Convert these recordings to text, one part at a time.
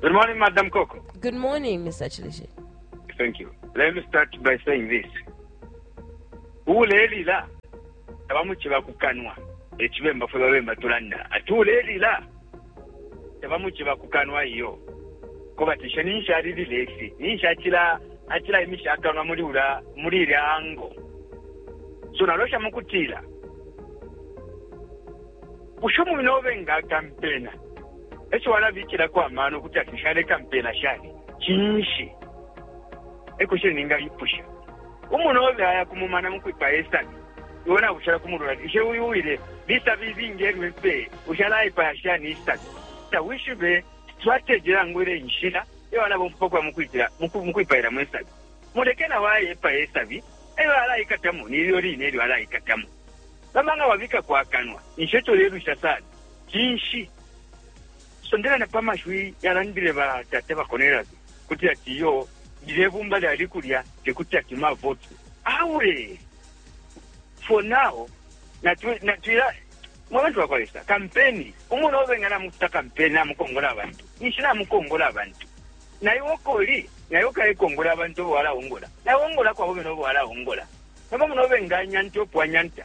Good morning, Madam Coco. Good morning, Mr. Chilishe. Thank you. Let me start by saying this. Uulelila tabamuchiba kukanwa ekibemba fwe babemba tulanda ati uulelila tabamuchiba kukanwa iyo kobatisha ninshi alilila efi ninshi achila achila imisha akanwa muli ula muli ile ango so nalosha mukutila usho mumina obe nga akampena e co alabikilako amano ukuti ati nshaleka mpeela shani? Cinshi? E question ningaipusha. Umunobe aya ku mumana mu kwipaya isabi, iwe nabushala ku mulundu ati, Bushe uyu uwile lisabi ilingi e lyo empeye? Bushe alaipaya shani isabi? Tawishibe strategy nangu ile inshila iyo alabomfya pa kuya mu kwitila mu ku- mu kwipailamo isabi. Muleke na o aye epaye isabi, e lyo alaikatamo ni ilyo line ilyo alaikatamo. Nomba nga wabikako akanwa, ninshi e co ulelwisha sana. cinshi? Sondela na pa mashiwi yalandile batata ba Cornelius kuti ati iyo lilye bumba lyali kulya te kuti ati mavoti awe for now natwila mwe bantu bakwa lesa kampeni umuntu obenga namukuta kampeni namukongola abantu ninshi namukongola abantu naye okoli naye okayekongola abantu obo walaongola naye ongola kwabo bene obo walaongola nomba muno obenganyanta opwanyanta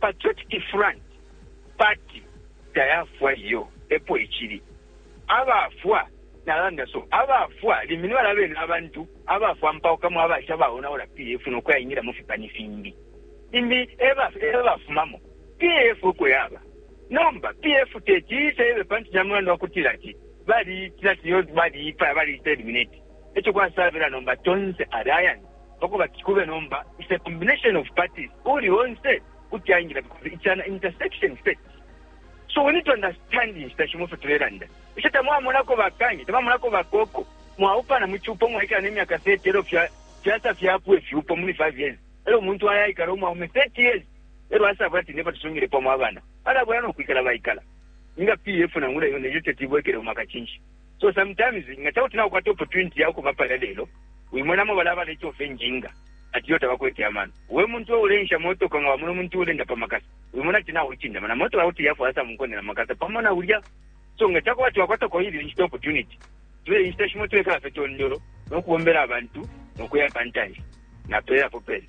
Patriotic Front party tayafwa iyo epo icili. Abafwa nalanda so abafwa limbi nibala bene abantu abafwa mpaukamo abasha baonaula PF nokuya ingila mufipani fimbi. Limbi eba ebafumamo PF oko yaba. Nomba PF teti iise ibe pantu camulandu wakutila ati bali itila ati iyo bali ipaya bali iterminate. Eco kwasabila nomba tonse alliance. pakubati kube nomba is a combination of parties uuli onse kuti aingila because it's an intersection state so we need to understand inshita shimo fyo tulelanda isho tamwamonako bakanye tamwamonako bakoko mwaupana mu cupo mwaikala nemyaka 30 elo fyasa fyapwa ifyupo muli 5 years elo umuntu ayaikala umwaume 30 years elo asabula ati neba tusungile pamo abana alabula nokwikala baikala nga pf nangula yo neyo tetibwekele umwaka cinshi So sometimes nga cakuti naukwata opportunity ya ukuba palya lelo wimonamo balya abalecofa injinga ati iyo tabakwete amano. We muntu we uleensha motoka nga wamona umuntu uleenda pa makasa wimona ati naulicindama na motoka kuti yafwaya sa munkonde na makasa pamo na ulya. So nga cakuba ati wakwatako ili inshita opportunity tule inshita shimo tulekala fye tondolo no kubombela abantu no kuya pa ntanshi. Napelela po pene.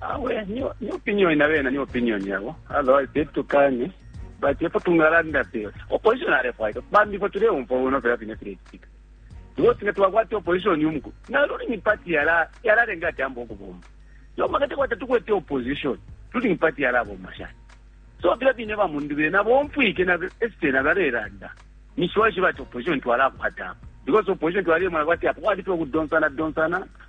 Awe ni ni opinion na bena ni opinion yabo otherwise they to kane but epo tungalanda pe opposition are fight bambi fo tule umfo uno pe bine tule speak tuwo tine twakwata opposition yumko na luli ni party yala yala renga tambo kubomba yo makate kwata tukwete opposition luli ni party yala bomba sha so bila bine ba mundu bena bomfwike na este na bareranda ni shwa shiba opposition twala kwata because opposition twali mwana kwati apo kwati twa kudonsana donsana